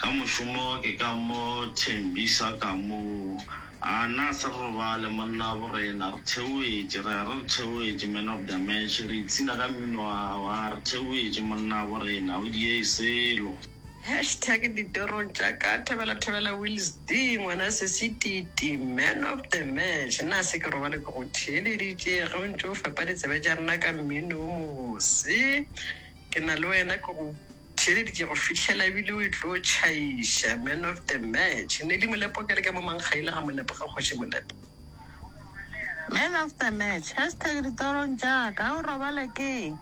Ka mošomo ke ka mo thembisa ka mo, a na se re robale monna bo rena, re theoetše, re a re re theoetše Man of the Match, re ipshina ka mmino wa gago, a re theoetše monna bo rena, o diee selo. Hashtag ditorong tša ka Thobela Thobela Wills De ngwana se se titi Man of the Match, na se ke robale ke go theeleditše ge o ntše o fepa ditsebe tša rena ka mmino wo mobose, ke na le wena ke go. Theleditše ke go fihlela ebile o e tlo tšhaiša man of the match Nelly Molepo ke re ke momankgaile ga Molepo ga kgoši Molepo. Man of the match hashtag ditorong tša ka o robale keng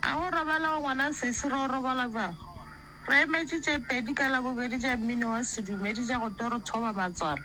a go robala o ngwana sesi ro robala bjang re emetše tše pedi ka labobedi tša mmino wa sedumedi tša go toro thoba matswalo